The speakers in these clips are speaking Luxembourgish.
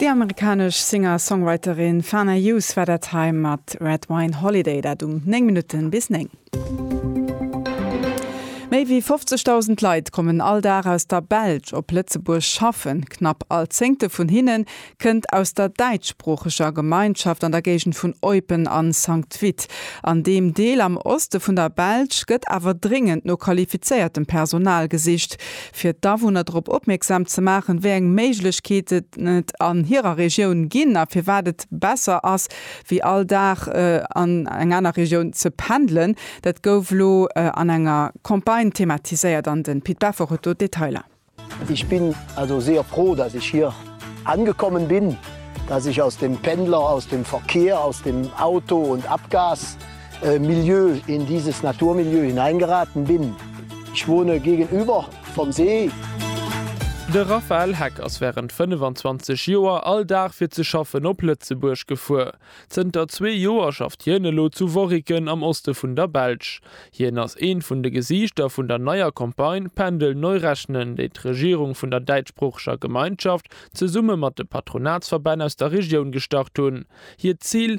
Déi amerikanesch Singer-Songwriterin Fana Hughes war dat hei mat Red Wine Holiday, dat um 9 Minutte bis 9. Méi wéi 50.000 Leit kommen all Dag aus der Belsch op Lëtzebuerg schaffen. Knapp all Zéngte vun hinne kënnt aus der däitschsproocheger Gemeinschaft an der Géigend vun Eupen a Sankt Vith. An deem Deel am Oste vun der Belsch gëtt awer dréngend no qualifizéiertem Personal gesicht. fir d'Awunner drop opmierksam ze maachen, wéi eng Méiglechkeeten et an hirer Regioun ginn a firwat et besser ass, wéi all Dag an eng aner Regioun ze pendelen. Dat gouf elo an enger Campagne thematiséiert an de Pit Beffer huet do d'Detailer. Ich bin also sehr froh, dass ich hier angekommen bin, dass ich aus dem Pendler, aus dem Verkehr, aus dem Auto und Abgas Milieu, in dieses Naturmilieu hineingeraten bin. Ich wohne gegenüber vom See. De Raphaël Heck ass wärend 25 Joer all Dag fir ze schaffen op Lëtzebuerg gefuer. Zënter zwee Joer schafft hien elo zu Worriken am Oste vun der Belsch. Hien ass eent vun de Gesiichter vun der neier Campagne Pendel neu rechnen, déi d'Regierung vun der däitschsproocheger Gemeinschaft zesumme mat de Patronatsverbänn aus der Regioun gestart hunn. Hiert Zil?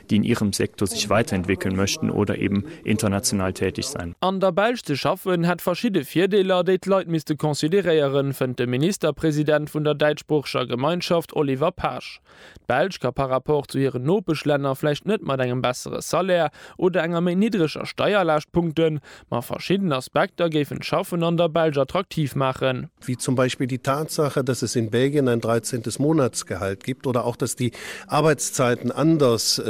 déi in ihrem Sektor sich weiterentwickeln möchten oder eben international tätig sein. An der Belsch ze schaffen, hätt verschidde Virdeeler, déi d'Leit misste consideréieren, fënnt de Ministerpresident vun der däitschsproocheger Gemeinschaft Oliver Paasch. D'Belsch ka par rapport zu hiren Nopeschlänner vläicht net mat engem bessere Salaire oder enger méi niddreger Steierlaascht punkten, Ma verschidden Aspekter géifen d'Schaffen an der Belsch attraktiv maachen. Wie zum Beispill die Tatsache, dass es in Belgien ein dreizehntes Monatsgehalt gibt oder auch dass die Arbeitszeiten anders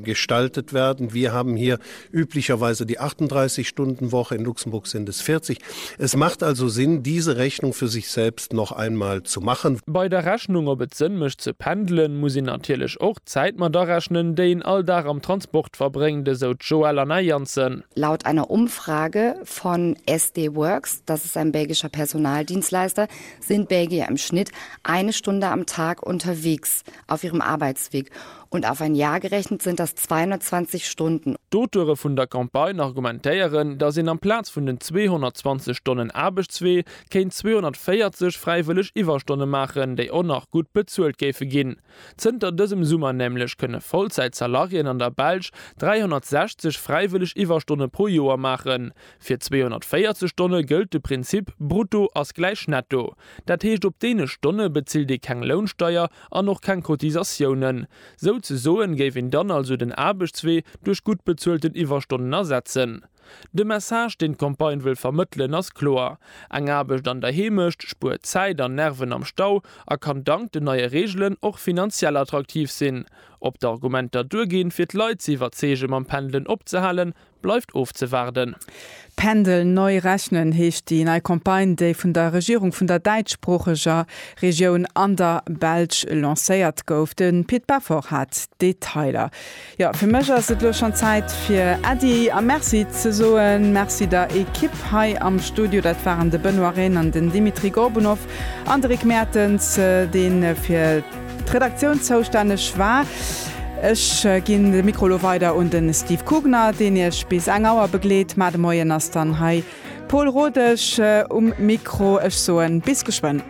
gestaltet werden. Wir haben hier üblicherweise die 38 Stunden Woche, in Luxemburg sind es 40. Es macht also Sinn, diese Rechnung für sich selbst noch einmal zu machen. Bei der Rechnung, ob et Sënn mécht ze pendelen, muss een natierlech och d'Zäit mat arechnen, déi een all Dag am Transport verbréngt, esou d'Joëlle Anna Janssen. Laut einer Umfrage von SD Worx, das ist ein belgischer Personaldienstleister, sind Belgier im Schnitt eine Stunde am Tag unterwegs auf ihrem Arbeitsweg und auf ein Jahr gerechnet sind das 220 Stunden. D'Auteure vun der Campagne argumentéieren, datt een amplaz vun den 220 Stonnen Aarbechtswee kéint 240 fräiwëlleg Iwwerstonne maachen, déi och nach gutt bezuelt géife ginn. Zënter dësem Summer nämlech kënne Vollzäit-Salariéen an der Belsch 360 fräiwëlleg Iwwerstonne pro Joer maachen. Fir 240 Stonne gëllt de Prinzip Brutto ass gläich Netto. Dat heescht, op deene Stonne bezilt ee keng Lounsteier an och keng Cotisatiounen. Souzesoen géif een dann also den Aarbechtswee duerch gutt bezuelten Iwwerstonnen ersetzen. De Message, deen d'Campagne wëll vermëttelen, ass kloer, Eng Aarbecht an der Heemecht spuert Zäit an Nerven am Stau a kann dank den neie Reegelen och finanziell attraktiv sinn. Ob d'Argumenter duerginn, fir d'Leit ze iwwerzeege mam Pendelen opzehalen, bleift ofzewaarden. Pendel neu rechnen heescht déi nei Campagne, déi vun der Regierung vun der däitschsproocheger Regioun an der Belsch lancéiert gouf. De Pit Beffort hat d'Detailer. Jo, fir mech ass et lo schon Zäit fir Äddi a Merci ze soen. Merci der Ekipp hei am Studio, dat waren de Benoît Rehn an den Dimitri Gorbunov an de Rick Mertens, deen fir d'Redaktioun zoustänneg war. Ech ginn de Mikro lo weider un de Steve Kugner, deen iech bis eng Auer begleet. Mar de Moien ass dann hei Pol Rodesch um Mikro. Ech soen bis geschwënn.